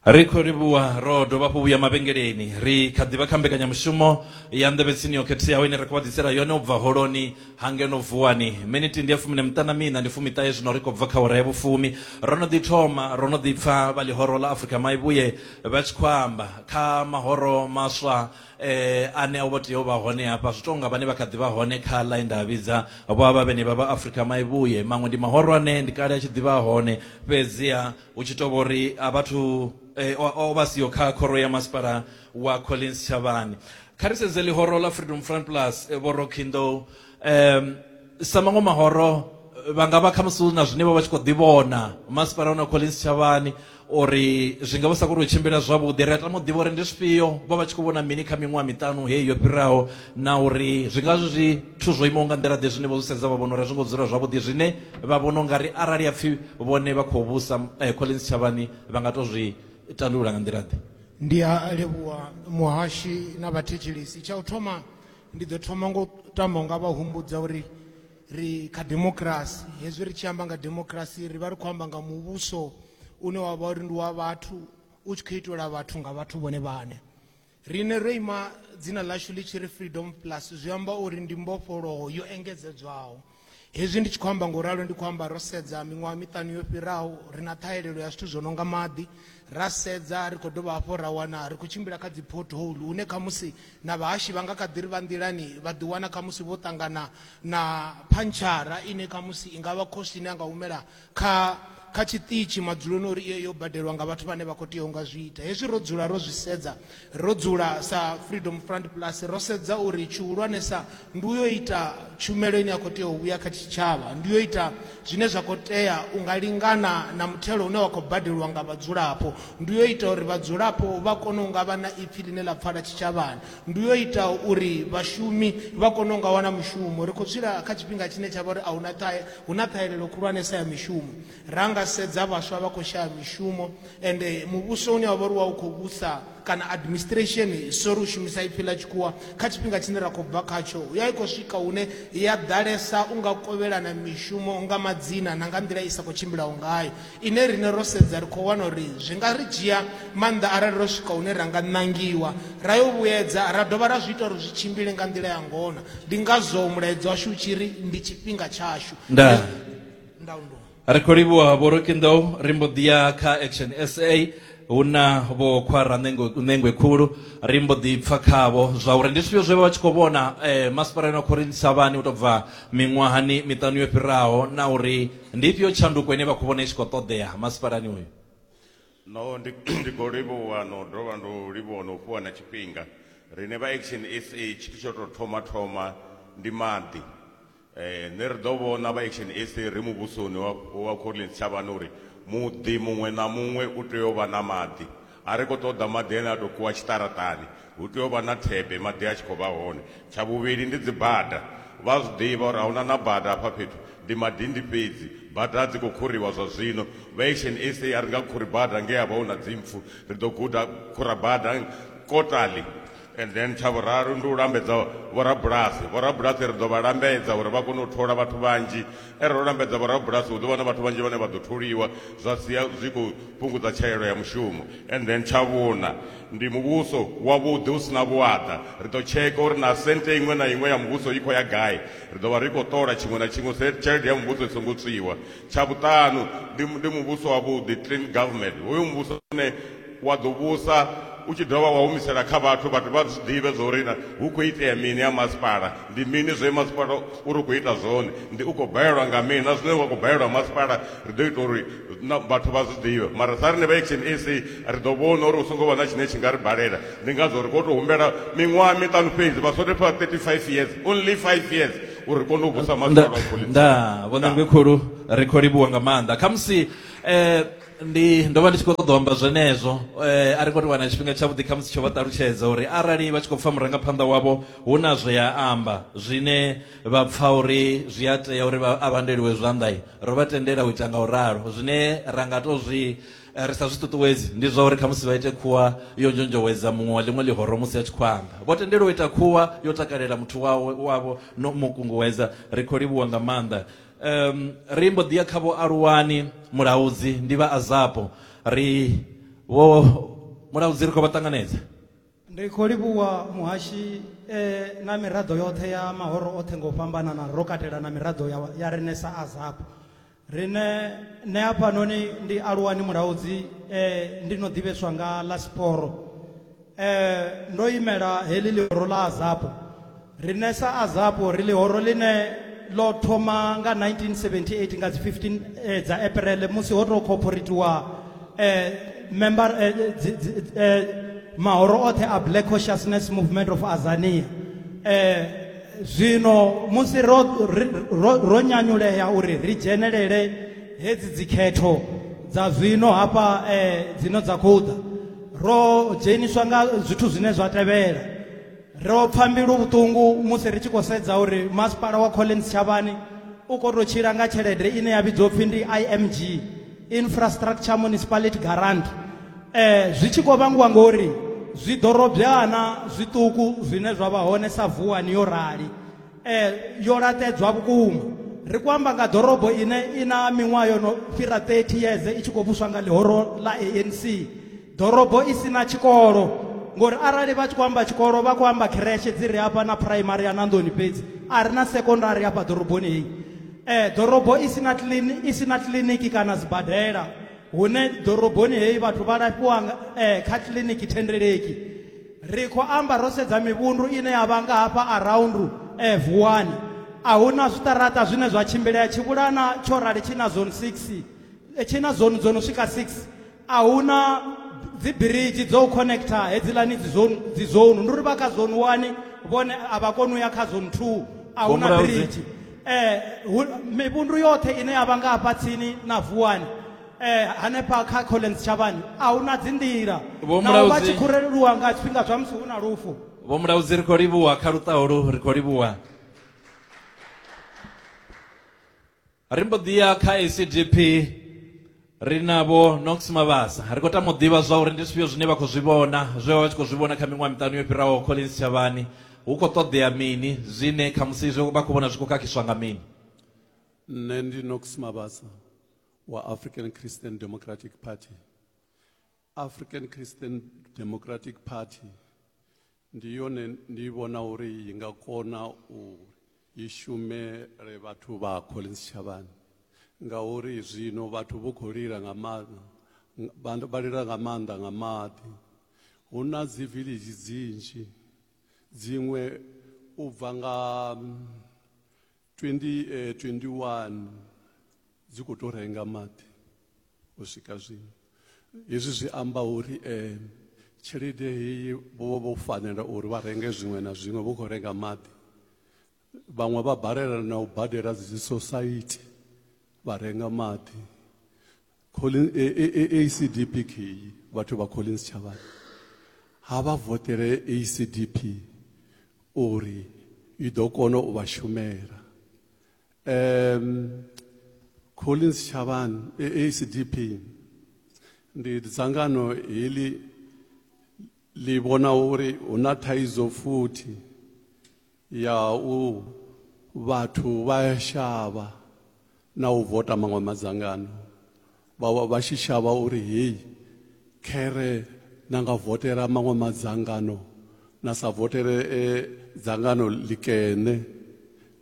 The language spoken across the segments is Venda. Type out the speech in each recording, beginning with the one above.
Ri khou livhuwa ro dovha hafhu vhuya mavhengeleni. Ri kha ḓi vha kha mbekanyamushumo ya Nḓevhe Tsini yo Khetheaho ine ra khou vha ḓisela yone u bva Holoni ha ngeno Vuwani. Miniti ndi ya fumi na miṱanu na miṋa, ndi fumiṱahe zwino ri khou bva kha awara ya vhufumi. Ro no ḓi thoma, ro no ḓi pfa vha Ḽihoro ḽa Afrika Maivhuye vha tshi khou amba. Kha mahoro maswa eh ane a vho tea u vha hone hafha zwi tonga vhane vha kha ḓi vha hone kha line nda vhidza vho avha vhene vha vha Africa Maivhuye maṅwe ndi mahorwane ndi kale a tshi ḓivha hone fhedziha hu tshi tovha uri a vhathu eh, o vha siyo kha khoro ya masipala wa Collins Chavani kha ri sedze ḽihoro ḽa Freedom Front Plus eh, vho Rockindo um sa maṅwe mahoro vha nga vha khamusi hu na zwine vha vha tshi khou ḓivhona masipala hona collins tshavhani uri zwi nga vha sa koni u tshimbila zwavhuḓi ri a tama u ḓivha uri ndi zwifhio vha vha tshi khou vhona mini kha miṅwaha miṱanu heyi yo fhiraho na uri zwi nga zwi zwithu zwo imaho nga nḓila ḓe zwine vho zwi sedza vha vhona uri a zwi ngo dzula zwavhuḓi zwine vha vhona u nga ri arali a pfhi vhone vha khou vhusa eh, collins tshavhani vha nga tou zwi tandulula nga nḓila ḓe ndi a livhuwa muhashi na vhathetshelesi tsha u thoma Ndi ḓo thoma ngo tama unga vha humbudza uri ri kha democracy hezwi ri tshi amba nga democracy ri vha ri khou amba nga muvhuso une wa vha uri ndi wa vhathu u tshi khou itelwa vhathu nga vhathu vhone vhane rine ro ima dzina ḽashu ḽi tshi ri freedom plus zwi amba uri ndi mbofholowo yo engedzedzwaho Hezwi ndi tshi khou amba nga u ralo ndi khou amba ro sedza miṅwaha miṱanu yo fhiraho ri na ṱhahelelo ya zwithu zwo no nga maḓi, ra sedza ri khou dovha hafhu ra wana ri khou tshimbila kha dzi pothole hune khamusi na vhahashi vha nga kha ḓi ri vha nḓilani vha ḓiwana khamusi vho ṱangana na phantshara ine khamusi i nga vha khosi ine a nga humela kha kha tshiṱitshi madzuloni uri iyo yo badelwa nga vhathu vhane vha khou tea u nga zwi ita hezwi ro dzula ro zwi sedza ro dzula sa freedom front plus ro sedza uri tshihulwanesa ndi uyo ita tshumelo ine ya khou tea u vhuya kha tshitshavha ndi yo ita zwine zwa khou tea u nga lingana na muthelo une wa khou badeliwa nga vhadzulapo ndi yo ita uri vhadzulapo vha kone u nga vha na ipfhi ḽine ḽa pfala tshitshavhani ndi yo ita uri vhashumi vha kone u nga wana mushumo ri khou tshila kha tshifhinga tshine tsha vha uri ahuna ṱhahe hu na ṱhahelelo khulwanesa ya mishumo ra nga sedza vhaswa vha khou shaya mishumo ende muvhuso une wa vha uri wa u khou vhusa kana administration sori u shumisa ipfhi ḽa tshikhuwa kha tshifhinga tshine ra khou bva khatsho ya i khou swika hune ya ḓalesa u nga kovhelana mishumo nga madzina na nga nḓila i sa khou tshimbilaho ngayo ine rine ro sedza ri khou wana uri zwi nga ri dzhia maanḓa arali ro swika hune ra nga ṋangiwa ra yo vhuyedza ra dovha ra zwi ita uri zwi tshimbile nga nḓila ya ngona ndi ngazwo mulaedza washu u tshi ri ndi tshifhinga tshashu nda ndaundo ri khou livhuwa vho rokinḓou ri mbo ḓi ya kha action sa hu na vho khwara ṋengwe khulu ri mbo ḓi pfa khavho zwa uri ndi zwifhio zwe vha vha tshi khou vhona um masipalani wa khorinthisa vhani u tou bva miṅwahani miṱanu yo fhiraho na uri Ndi ifhio tshanduko ine vha khou vhona i tshi khou ṱoḓea masipalani uyu? No, ndi, ndi khou livhuwa no dovha ndo livhuwa no fhiwa na tshifhinga. Riṋe vha Action SA tshithu tsho tou thoma thoma ndi maḓi. Eh, nṋe ri ḓo vhona vha Action SA ri muvhusoni wa, wa Collins Tshavhani uri muḓi muṅwe na muṅwe u tea u vha na maḓi. A ri khou ṱoḓa maḓi ane a tou kuwa tshiṱaraṱani, hu tea u vha na thebe maḓi a tshi khou vha hone. Tsha vhuvhili ndi dzibada, vha a zwi ḓivha uri a hu na na bada hafha fhethu, ndi madindi fhedzi. Bada a dzi khou khuriwa zwa zwino, vha Action SA a ri nga khuri bada ngei ha vha hu na dzimpfu, ri ḓo guda khurabada kotali. and then tsha vhuraru ndi u lambedza vhorabulasi vhorabulasi ri ḓo vha lambedza uri vha kone u thola vhathu vhanzhi e ro lambedza vhorabulasi hu ḓo vha na vhathu vhanzhi vhane vha ḓo tholiwa zwa sia zwi khou fhungudza tshaelo ya mushumo and then tsha vhuna ndi muvhuso wavhuḓi hu sina vhuaḓa ri ḓo tsheka uri na sente iṅwe na iṅwe ya muvhuso i khou ya gai ri ḓo vha ri khou ṱola tshiṅwe na tshiṅwe tshelede ya muvhuso i songo tswiwa Tsha vhuṱanu, ndi, ndi muvhuso wavhuḓi, clean government. Hoyo muvhuso une wa ḓo vhusa u tshi dovha wa humisela kha vhathu, vhathu vha zwi ḓivhe zwa uri hu khou itea mini ha masipala, ndi mini zwe masipala uri u khou ita zwone, ndi u khou balelwa nga mini, na zwine wa khou balelwa masipala ri ḓo ita uri na vhathu vha zwi ḓivhe. Mara sa riṋe vha Action SA ri ḓo vhona uri hu songo vha na tshine tshi nga ri balela, ndi ngazwo ri khou tou humbela miṅwaha miṱanu fhedzi, vha sole fha 35 years, only five years, uri kone u vusa maḓi a vhapholisa. nda vhonangwe khulu ri khou livhuwa nga maanḓa khamusi eh ndi ndo vha ndi tshi khou ṱoḓa u amba zwenezwo eh a ri khou tou wana tshifhinga tshavhuḓi khamusi tsho vha ṱalutshedza uri arali vha tshi khou pfha murangaphanḓa wavho hu na zwe a amba zwine vha pfha uri zwi a tea uri vha a vhandeliwe zwanḓa ro vha tendela u ita nga u ralo zwine ra nga tou zwi Eh, ri sa zwi ṱuṱuwedzi ndi zwa uri khamusi vha ite khuwa yo nzhonzhowedza muṅwe wa ḽiṅwe ḽihoro musi a tshi khou amba vho tendelwa u ita khuwa yo takalela muthu wawe wavho no mu kunguwedza ri khou livhuwa nga maanḓa um, ri mbo ḓiya kha vho aluwani mulaudzi ndi vha azapo ri vho mulaudzi ri khou vha ṱanganedza Ri khou livhuwa muhashi e na miraḓo yoṱhe ya mahoro oṱhe nga u fhambanana ro katela na miraḓo ya, ya renesa azapo rine nṋe hafhanoni ndi aluwani mulaudzi eh, ndi no ḓivheswa nga ḽa siporo eh, ndo imela heḽi ḽihoro ḽa azapo rine sa azapo ri ḽihoro ḽine ḽo thoma nga 1978 nga dzi 15 eh, dza april musi ho tou khophorithiwa eh, member eh, dzi, dzi, eh, mahoro oṱhe a black consciousness movement of azania eh, zwino musi ro, ro, ro nyanyulea uri ri dzhenelele hedzi dzikhetho dza zwino hafha eh, dzino dza khou ḓa ro dzheniswa nga zwithu zwine zwa tevhela ro pfa mbilu vhuṱungu musi ri tshi khou sedza uri masipala wa collins tshavhani u khou tou tshila nga tshelede ine ya vhidzwa upfhi ndi img infrastructure municipality garant eh zwi tshi khou vhangiwa ngori zwiḓorobyana zwiṱuku zwine zwa vha hone sa vuwani yo rali eh yo laṱedzwa vhukuma ri ku amba nga ḓorobo ine i na miṅwaha yo no fhira 30 years i tshi khou vhuswa nga ḽihoro ḽa anc ḓorobo i si na tshikolo ngori arali vha tshi khou amba tshikolo vha khou amba khereshe dzi re hafha na phuraimari ya nanḓoni fhedzi a ri na sekondari hafha ḓoroboni heyi um ḓorobo i si na i si na kiḽiniki kana sibadela hune ḓoroboni heyi vhathu vha lafhiwa um kha kiḽiniki thendeleki ri khou amba ro sedza mivhundu ine ya vha nga hafha around um eh, vuwani a hu na zwiṱaraṱa zwine zwa tshimbilea tshivhulana tsho rali tshi na zone six eh, tshi na zone dzo no swika six a hu na dzibiriji dzo u connecta hedzilani dzi zone ndi uri vha kha zone one vhone a vha koni u ya kha zone two a hu na biriji eh mivhundu yoṱhe ine ya vha nga hafha tsini na vuwani eh hanefha kha collins tshavhani a hu na dzinḓila nao vha tshi khureleliwa nga tshifhinga zwa musi hu na lufu vho mulaudzi ri khou livhuwa kha luṱaho lu ri khou livhuwa ri mbo ḓi ya kha acdp ri navho nox mavhasa ri khou tama u ḓivha zwa uri ndi zwifhio zwine vha khou zwi vhona zwe vha vha tshi khou zwi vhona kha miṅwaha miṱanu yo fhiraho collins tshavhani hu khou ṱoḓea mini zwine khamusi zwe vha khou vhona zwi khou khakhiswa nga mini nṋe ndi nox mavhasa wa african christian democratic party African Christian Democratic Party ndi yone ndi vhona uri i nga kona u i shumele vhathu vha Collins Shavhani ngauri zwino vhathu vho khou lila nga maanḓa vha lila nga maanḓa nga maḓi hu na dzi village dzinzhi dziṅwe u bva nga 2021 dzi khou tou renga maḓi u swika zwino hezwi zwi amba uri um tshelede heyi vho vha vho fanela uri vha renge zwiṅwe na zwiṅwe vho khou renga maḓi vhaṅwe vha balela na u badela dzi sosaithi vha renga maḓi Collin, e, e, e, ACDP kheyi vhathu vha Collins Chavhani ha vha votele ACDP uri i ḓo kona u vha shumela um Collins Chavhani e, ACDP ndi dzangano heḽi ḽi vhona uri hu na thaidzo futhi Ya u vhathu vha ya shavha na u vota maṅwe madzangano vha vha vha tshi shavha uri heyi khere na nga votela maṅwe madzangano na sa votele e, dzangano ḽikene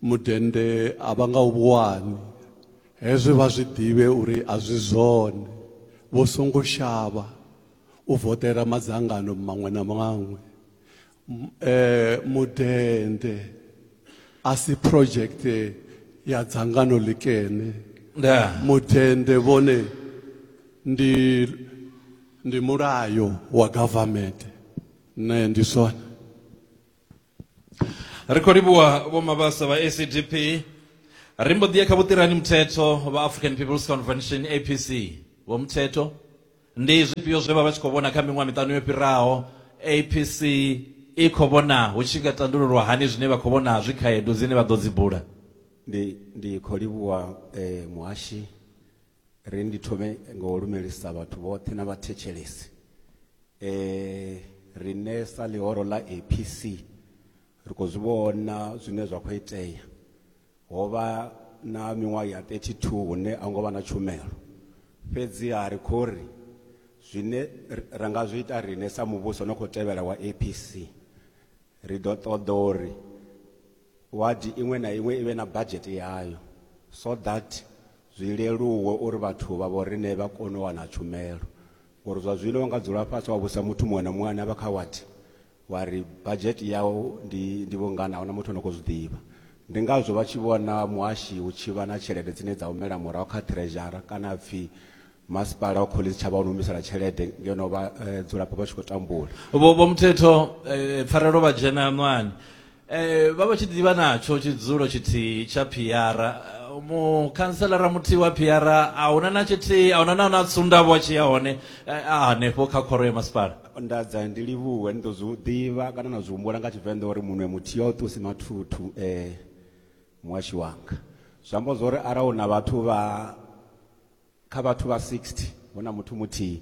mudende a vha nga u vhuwani hezwi vha zwi ḓivhe uri a zwi zwone vho songo shavha u votela madzangano maṅwe na maṅwe eh mudende asi project ya dzangano likene nda mudende vhone ndi ndi mulayo wa government ne ndi swona ri khou livhuwa vhomabasa vha acdp ri mbo ḓi ya kha vhuṱirani muthetho vha african peoples convention apc vho muthetho Ndi zwifhio zwe vha vha tshi khou vhona kha miṅwaha miṱanu yo fhiraho? APC i khou vhona hu tshi nga tandululwa hani zwine vha khou vhona zwi khaedu dzine vha ḓo dzi bula? Ndi ndi khou livhuwa muhashi. Ri ndi thome nga u lumelisa vhathu vhoṱhe na vhathetshelesi. Riṋe sa ḽihoro ḽa APC ri khou zwi vhona zwine zwa khou itea. Ho vha na miṅwaha ya 32 hune a ngo vha na tshumelo. Fhedziha ri khou ri, Zwine ra nga zwi ita riṋe sa muvhuso no khou tevhela wa APC, ri ḓo ṱoḓa uri wadi iṅwe na iṅwe i vhe na badzhete yayo so that zwi leluwe uri vhathu vha vhoriṋe vha kone u wana tshumelo. Ngori zwa zwino wa nga dzula fhasi wa vhudzisa muthu muṅwe na muṅwe ane a vha kha wadi Wa ri badzhete yau ndi ndi vhungana a huna muthu ano khou zwi ḓivha. Ndi ngazwo vha tshi vhona muhashi hu tshi vha na tshelede dzine dza humela murahu kha ṱhirezhara kana ha pfi masipala wa Collins Chavha u ni humisela tshelede ngeno vhadzulapo vha tshi khou tambula. Vho Muthetho, Pfarelo vha dzhena ṋwani Eh, vha vha tshi ḓivha natsho tshidzulo tshithihi tsha phiara Eh, mukhantselara muthihi wa phiara a huna na tshithihi a huna na na tsundavho a tshi ya hone eh, a hanefho kha khoro ya masipala ndadza ndi livhuwe ni ḓo zwi ḓivha kana na zwi humbula nga tshivenḓa uri munwe muthihi a u ṱusi mathuthu um muhashi wanga zwi amba zwa uri arali hu na vhathu vha kha vhathu vha 60 hu na muthu muthihi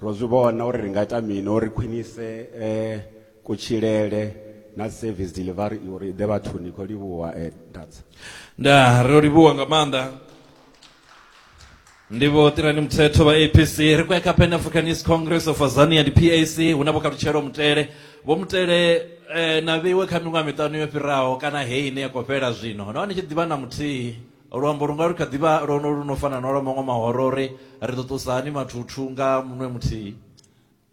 Ro zwi vhona uri ri nga ita mini uri ri khwinise kutshilele na service delivery uri i ḓe vhathuni. Ni khou livhuwa Ntats. Ndaa, ro livhuwa nga maanḓa. Ndi Vho Ṱirani Mthethwa vha APC. Ri khou ya kha Pan Africanist Congress of Azania, ndi PAC, hu na Vho Kalutshelo Mutele. Vho Mutele, na vheiwe kha miṅwaha miṱanu yo fhiraho kana heyi ine ya khou fhela zwino, no vha ni tshi ḓivha na muthihi? luambo lu nga lu kha ḓi vha lwo no lu no fana na lwa maṅwe mahoro uri ri ḓo ṱusa hani mathuthu nga munwe muthihi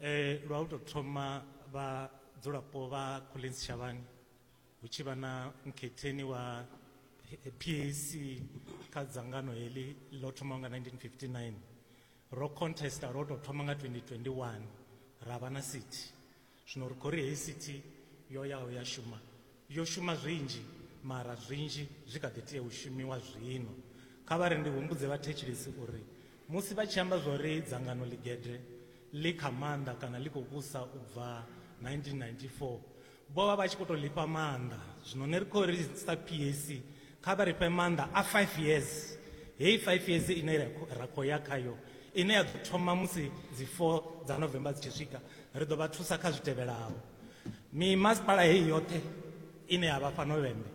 Eh, lwa u tou thoma vhadzulapo vha collins shavhani hu tshi vha na mukhetheni wa P- pac kha dzangano heḽi ḽo thomaho nga 1959 ro contesta lwo tou thoma nga 2021 ra vha na city Zwino ri khou ri heyi sithi yo yaho ya shuma, yo shuma zwinzhi, mara zwinzhi zwi kha ḓi tea u shumiwa zwino. Kha vha ri ndi humbudze vhathetshelesi uri musi vha tshi amba zwa uri dzangano ḽigede ḽi kha maanḓa kana ḽi khou vhusa u bva 1994, vho vha vha tshi khou tou ḽi fha maanḓa. Zwino nṋe ri khou ri sa PAC Kha vha ri fhe maanḓa a five years, heyi five years ine ra khou ya khayo ine ya ḓo thoma musi dzi four dza November dzi tshi swika, ri ḓo vha thusa kha zwi tevhelaho. Mimasipala heyi yoṱhe ine ya vha fhano Vhembe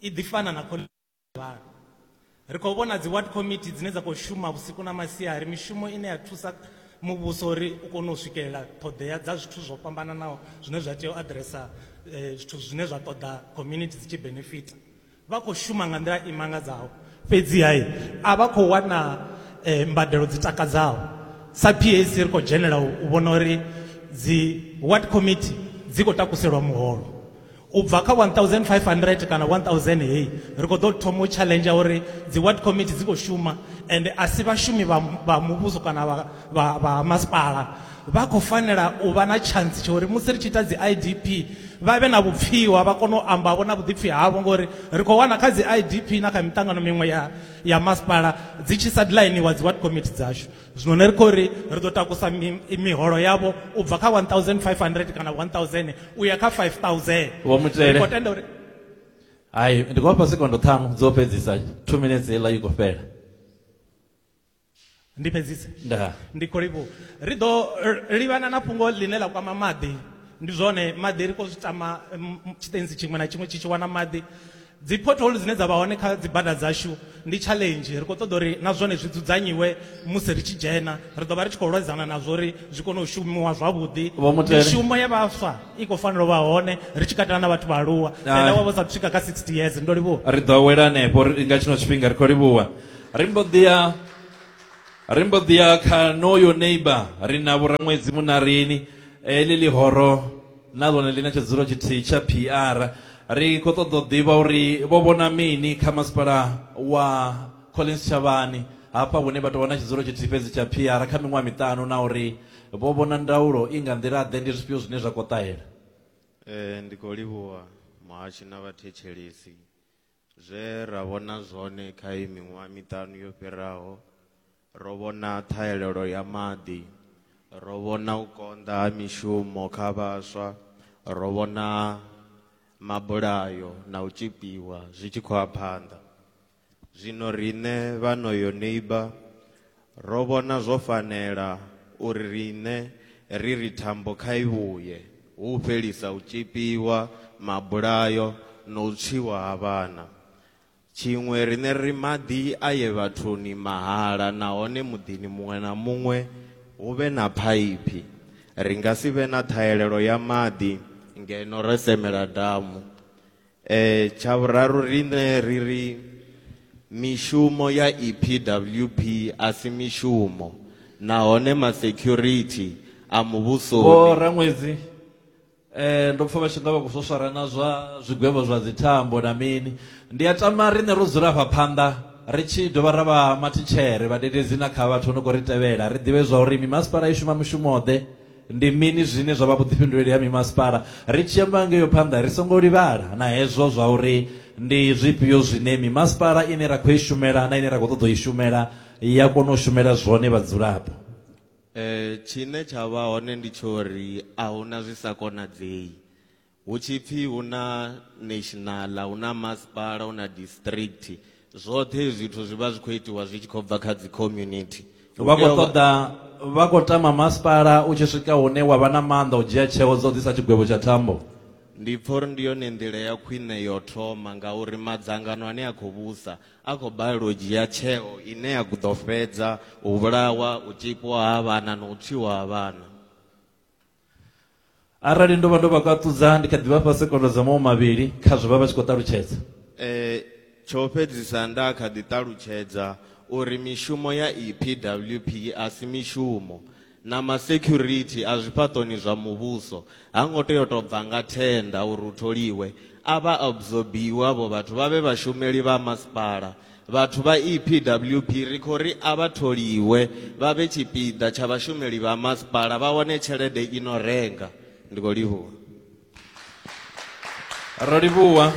i ḓi fana na khoḽidzhi ya Tshivhalo. Ri khou vhona dzi ward committee dzine dza khou shuma vhusiku na masiari, mishumo ine ya thusa. muvhuso uri u kone u swikelela ṱhoḓea dza zwithu zwo fhambananaho zwine zwa tea u aḓiresa eh, zwithu zwine zwa ṱoḓa community dzi tshi benefita vha khou shuma nga nḓila i mangadzaho fhedziha a vha khou wana eh, mbadelo dzi takadzaho sa pac ri khou dzhenela u vhona uri dzi ward committee dzi khou takuselwa muholo U bva kha 1500 kana 1000 hei, ri khou ḓo thoma u tshaḽenzha uri dzi ward committee dzi khou shuma ende a si vhashumi vha vha muvhuso kana vha vha vha ha masipala. Vha khou fanela u vha na tshantsi tsha uri musi ri tshi ita dzi IDP vha vhe na vhupfiwa, vha kone u amba vho na vhuḓipfi havho ngori ri khou wana kha dzi IDP na kha miṱangano miṅwe ya ya masipala dzi tshi sa ḓi ḽainiwa dzi ward committee dzashu. zwino ni ri khou ri ri ḓo takusa miholo yavho u bva kha 1500 kana 1000 u ya kha 5000 vho mutele khou tenda uri hai ndi khou vhafha sekondo ṱhanu dzo fhedzisa two minutes heiḽa i khou fhela ndi fhedzise nda ndi khou livhuwa ri ḓo livhana na fhungo ḽine ḽa kwama maḓi ndi zwone maḓi ri khou zwi tama tshiṱenzi tshiṅwe na tshiṅwe tshi tshi wana maḓi Dzi pothole dzine dza vha hone kha dzi bada dzashu ndi challenge, ri khou ṱoḓa uri na zwone zwi dzudzanyiwe musi ri tshi dzhena, ri ḓo vha ri tshi khou lwedzana nazwo uri zwi kone u shumiwa zwavhuḓi. Vho Mutele. Mishumo ya vhaswa i khou fanela u vha hone ri tshi katela na vhathu vhaaluwa, tenda wa vha u sa athu swika kha 60 years. Ndo livhuwa. Ri ḓo awela hanefho ri nga tshino tshifhinga, ri khou livhuwa. Ri mbo ḓi ya, ri mbo ḓi ya kha noyo neighbour, ri na Vho Raṅwedzi Muṋarini, heḽi ḽihoro. na ḽone ḽi na tshidzulo tshithihi tsha PR. Ri khou ṱoḓa u ḓivha uri vho vhona mini kha masipala wa Collins Tshavhani hafha hune vha tou vha na tshidzulo tshithihi fhedzi tsha PR kha miṅwaha miṱanu na uri vho vhona ndaulo i nga nḓila-ḓe, ndi zwifhio zwine zwa khou ṱahela? Ndi khou livhuwa muhashi na vhathetshelesi Zwe ra vhona zwone kha iyi miṅwaha miṱanu yo fhiraho, ro vhona ṱhahelelo ya maḓi, ro vhona u konḓa ha mishumo kha vhaswa, ro vhona mabulayo na u tzhipiwa zwi tshi khou ya phanḓa. Zwino riṋe vhano Yoniba, Ro vhona zwo fanela uri riṋe ri ri thambo kha i vhuye, hu u fhelisa u tzhipiwa, mabulayo na u tswiwa ha vhana. Tshiṅwe, riṋe ri ri maḓi a ye vhathuni mahala nahone muḓini muṅwe na muṅwe hu vhe na phaiphi. Ri nga si vhe na ṱhahelelo ya maḓi ngeno ro semela damu. Eh tsha vhuraru riṋe ri ri mishumo ya EPWP a si mishumo nahone ma security a Vho muvhusoni Raṅwedzi eh ndo pfa vha tshi nga vha khou swaswara na zwa zwigwevho zwa dzi thambo na mini. Ndi a tama riṋe ro dzula afha phanḓa ri tshi dovha ra vha mathitshere, vhadededzi na kha vhathu vho no khou ri tevhela ri ḓivhe zwa uri mimasipala i shuma mushumo ḓe. Ndi mini zwine zwa vha vhuḓifhinduleli ha mimasipala? Ri tshi amba ngeo phanḓa, ri songo livhala na hezwo zwa uri ndi zwifhio zwine mimasipala ine ra khou i shumela na ine ra khou ṱoḓa u i shumela ya kona u shumela zwone vhadzulapo. Tshine tsha vha hone ndi tsha uri a hu na zwi sa konadzei. Hu tshi pfi hu na national, hu na masipala, hu na district, zwoṱhe hezwi zwithu zwi vha zwi khou itiwa zwi tshi khou bva kha dzi community. Hu Vha tea khou u vha- ṱoḓa vha khou tama masipala u tshi swika hune wa vha na maanḓa u dzhia tsheo dza u ḓisa tshigwevho tsha thambo. Ndi pfa uri ndi yone nḓila ya khwine yo thoma ngauri madzangano ane a khou vhusa a khou balelwa u dzhia tsheo ine ya ḓo fhedza u vhulawa, u tzhipiwa ha vhana na u tswiwa ha vhana. arali ndo vha ndo vha kaṱudza ndi kha ḓi vha fha sekondo dza mawo mavhili kha zwe vha vha tshi khou ṱalutshedza Eh, tsho fhedzisa nda kha ḓi ṱalutshedza uri mishumo ya epwp a si mishumo na masecurity a zwifhaṱoni zwa muvhuso ha ngo tea u tou bva nga thenda uri u tholiwe a vha absorbiwe avho vhathu vha vhe vhashumeli vha masipala Vhathu vha EPWP ri khou ri a vha tholiwe vha vhe tshipiḓa tsha vhashumeli vha masipala vha wane tshelede i no renga. Ndi khou livhuwa. Ro livhuwa.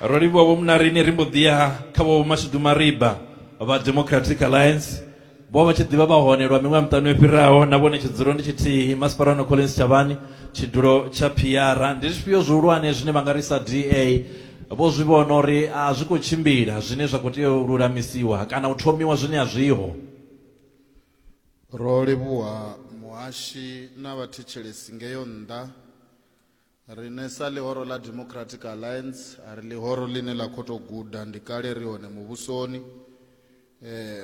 Ro livhuwa Vho Munarini ri mbo ḓi ya kha Vho Mashudu Mariba vha Democratic Alliance vho vha tshi ḓivha vha hone lwa miṅwaha miṱanu yo fhiraho na vhone tshidzuro ndi tshithihi masipala no collins tshavhani tshidulo tsha phiara ndi zwifhio zwihulwane zwine vha nga ri sa da vho zwi vhona uri a zwi khou tshimbila zwine zwa khou tea u lulamisiwa kana u thomiwa zwine a zwiho Ro livhuha muhashi na vhathetshelesi ngeyo nnḓa Riṋe sa ḽihoro ḽa Democratic Alliance a ri ḽihoro ḽine ḽa khou tou guda, ndi kale ri hone muvhusoni.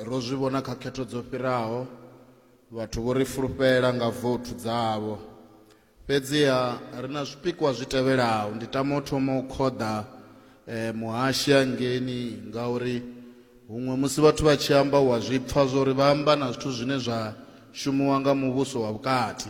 Ro zwi vhona kha khetho dzo fhiraho, vhathu vho ri fulufhela nga vouthu dzavho. Fhedziha ri na zwipikwa zwi tevhelaho, ndi tama u thoma u khoḓa muhashi hangeini ngauri huṅwe musi vhathu vha tshi amba u a zwi pfha zwa uri vha amba na zwithu zwine zwa shumiwa nga muvhuso wa vhukati.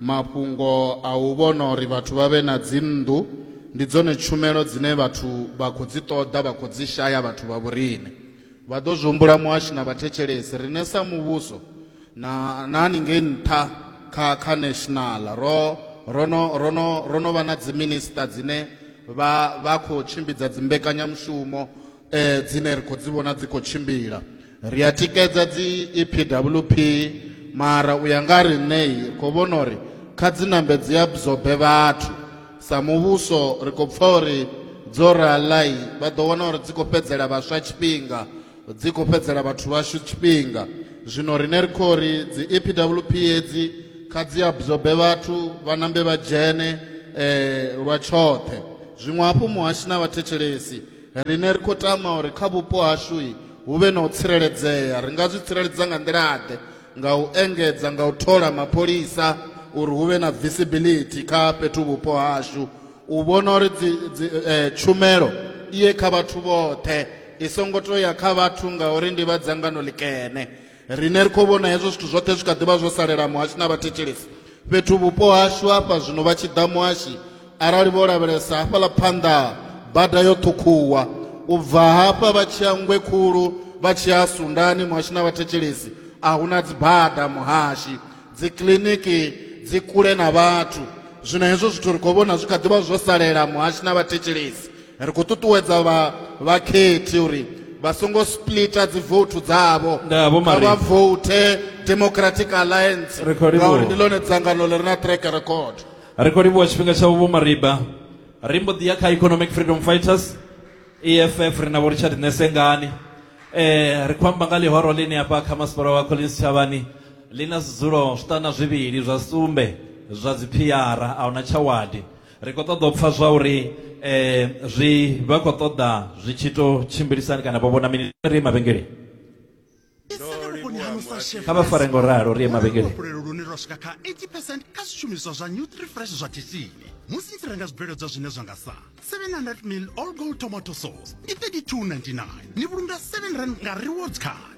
Mafhungo a u vhona uri vhathu vha vhe na dzinnḓu ndi dzone tshumelo dzine vhathu vha khou dzi ṱoḓa vha khou dzi shaya vhathu vha vhoriṋe vha ḓo zwi humbula muhashi na vhathetshelesi riṋe sa muvhuso na na haningei nṱha kha kha national ro ro no ro no ro no vha na dzi minister dzine vha vha khou tshimbidza dzi mbekanyamushumo dzine ra khou dzi vhona dzi khou tshimbila ri a tikedza dzi epwp mara u ya nga riṋei ri khou vhona uri kha dzi nambe dzi absorbe vhathu sa muvhuso ri khou pfha uri dzo raḽai vha ḓo wana uri dzi khou fhedzela vhaswa tshifhinga dzi khou fhedzela vhathu vhashu tshifhinga zwino riṋe ri khou ri dzi epwp hedzi kha dzi absorbe vhathu vha nambe vha dzhene lwa tshoṱhe zwiṅwe hafhu muhashi na vhathetshelesi Riṋe ri khou tama uri kha vhupo hashu hu vhe na u tsireledzea. Ri nga zwi tsireledza nga nḓila-ḓe? Nga u engedza nga u thola mapholisa uri hu vhe na visibility kha fhethu vhupo hashu u vhona uri dzi, dzi, eh, tshumelo i ye kha vhathu vhoṱhe i songo tou ya kha vhathu ngauri ndi vha dzangano ḽikene. Riṋe ri khou vhona hezwo zwithu zwoṱhe zwi kha ḓi vha zwo salela muhashi na vhathetshelesi fhethu vhupo hashu hafha zwino vha tshi ḓa muhashi arali vho lavhelesa hafhaḽa phanḓa bada yo ṱhukhuwa u bva hafha vha tshi ya nngwe khulu vha tshi ya sundani muhashi na vhathetshelesi a hu na dzibada muhashi dzikiḽiniki dzi kule na vhathu zwino hezwo zwithu ri khou vhona zwi kha ḓi vha zwo salela muhashi na vhathetshelesi ri khou ṱuṱuwedza vha vhakhethi uri vha songo splita dzivoutu dzavho kha vha voute democratic alliance ngauri ndi ḽone dzangano ḽi re na track record ri khou livhuwa tshifhinga tshavho vho mariba ri mbo ḓi ya kha economic freedom fighters eff ri na vho richard nesengani eh ri khou amba nga ḽihoro ḽine afha kha masipala wa collins tshavhani ḽi na zwidzulo zwiṱana zwivhili zwa sumbe zwa dziphiara a huna tshawadi ri khou ṱoḓa u pfa zwa uri um zwi vha khou ṱoḓa zwi tshi to tshimbilisani kana vho vhona mini ri ye mavhengeleni kha vha fare ngo ralo ri ye mavhengeleni lune lwa swika kha 80 percent kha zwishumiswa zwa new three fresh zwa tshitshini musi ni tshi renga zwibveledzwa zwine zwa nga sa 700 mil all gold tomato sauce ndi 3299 ni vhulunga 7 rand nga rewards card